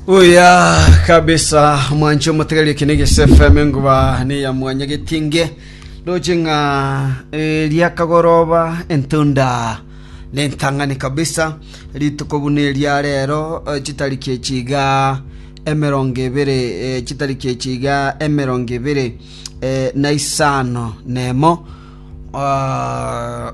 Uya kabisa mwanchi omotegereria kene gese FM enguba ne ya mwanya getinge roche ng'a eh, riakagoroba entunda ne ntang'ani kabisa rituko buna eria rero eh, chitariki echiga emerongo ebere eh, chitariki echiga emerongo ebere eh, na isano nemo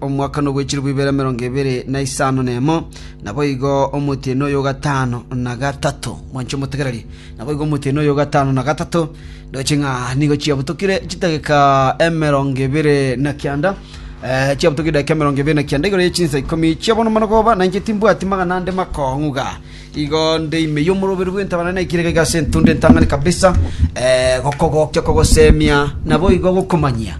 omwaka nobwe chilifu ibere emerongo ebere na isano nemo, naboigo omotienyi oyo o gatano na gatato. Mwanche omotegererie. Naboigo omotienyi oyo o gatano na gatato, nigo ching'a nigo chiabutokire chidageka emerongo ebere na kianda, eh, chiabutokire edageka emerongo ebere na kianda igoro ye chinsa ikomi chi'obonomano boba, na inche timbwati magana ande makong'uga. Igo nde ime y'omoroberi bw'entaba naye naikire igaiga ase entunda entang'ani kabisa, eh, gokogokia, kogosemia, naboigo gokomanyia.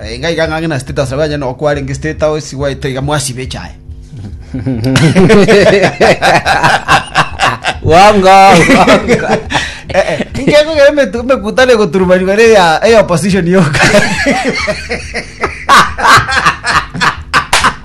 Enga iga ng'ang'e na status nabo anyene okwa arenge state house gwaito iga mwasibe echaye. Wongo, wongo. Eh, eh, ingeko iga emetu- emekutano egoturumani bare eya eya opposition yoka.